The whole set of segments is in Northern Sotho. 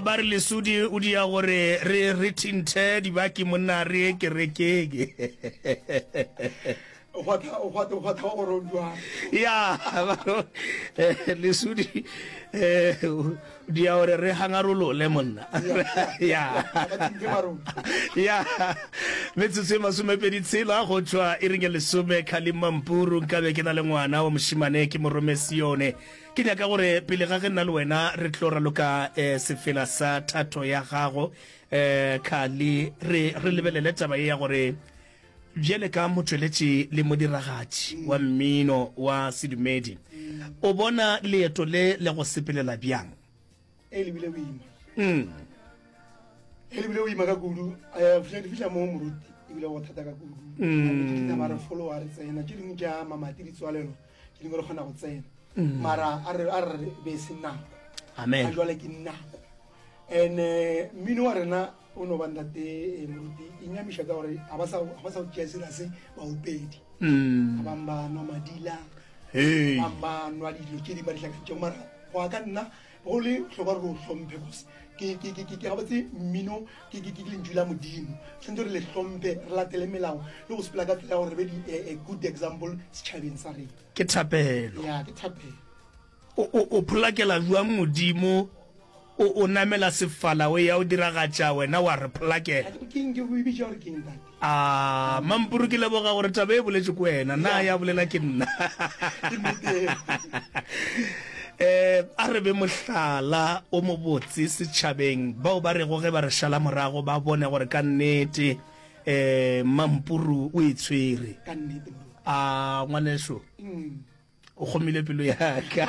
Ba re lesodi o dia gore re re thinthe dibaki monna re ye kerekeng. ya lesudi eh, dia gore re hangarolole monna ya ya metsotso e masomepedi tshela go tšwa e reng ya lesome kgalemampuru nkabe ke na le ngwana wa mošimane ke morome sione Ke nyaka gore pele ga ge nna le wena re tlo raloka eh, sefela sa thato ya gago eh, khali re, re lebelele taba ye ya gore bjele ka motšweletši le modiragatši wa mmino wa sedumedi o bona leeto le le go sepelela bjang e lebile boima mm. e lebile boima ka kudu eh, di fitlha mo moruti ebile go thata ka kudu mm. a re folo a re tsena tse dingwe ja mamati ditswalelo tse dingwe re kgona go tsena mm. mara a re be se nako a jwale ke nako and eh, mmino wa rena o no ba ntate eh, moruti e nyamiša ka gore ga ba sa go tšea serase baopedi ga bangwe ba nwa madila bangwe ba nwa dilo tse di ba ditlhakantšego mara go ya ka nna go le bohlokwa gore o hlompe kose ke gabotse mmino ke lentšu la modimo tshwanetse re le hlompe re latele melao le go sepela ka tsela ya gore re be di eh, eh, good example setšhabeng sa rena ke thapelo ya ke thapelo o pholakela jwang modimo o namela sefala o ya o diragatša wena wa re pholakela ke eng ke go ebitša gore ke eng tate A Mampuru ke leboga gore taba e boletšwe ko wena na ya bolela ke nna eh a re be mohlala o mo botse setšhabeng bao ba rego ge ba re šala morago ba bone gore ka nnete eh mampuru o e tshwere a ngwaneso mm. o kgomile pelo yaka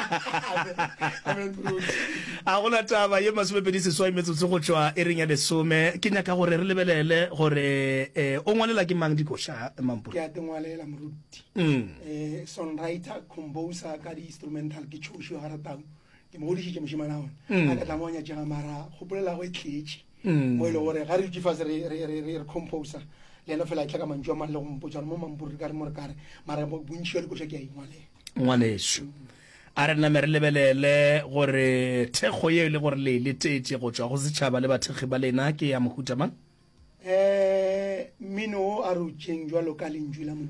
a gona taba ye masomepedi seswai metsotso go tšwa e reng ya lesome ke nyaka gore re lebelele gore eh, o ngwalela ke mang dikoša mampo ke a tengwalela moruti mm. eh, songwriter composer ka di-instrumental ke tšhošo ya garatau ke mo godišitše mošemana one mm. a ka tlamoanya tšega mara kgopolelago e tletše mm. mo e leng gore ga re dutse fase re composa le ena fela a tla ka mantšu a mang le go mpotsa mo mampuri ka re mo re kare mara bontši ya dikoša ke a ingwalela ngwaneso a re name re lebelele gore thekgo ye e le gore le letetše go tswa go setšhaba le bathekgi ba lena ke ya mohuta mang um mmino o a re o tšeng jalo ka lentšu la modimo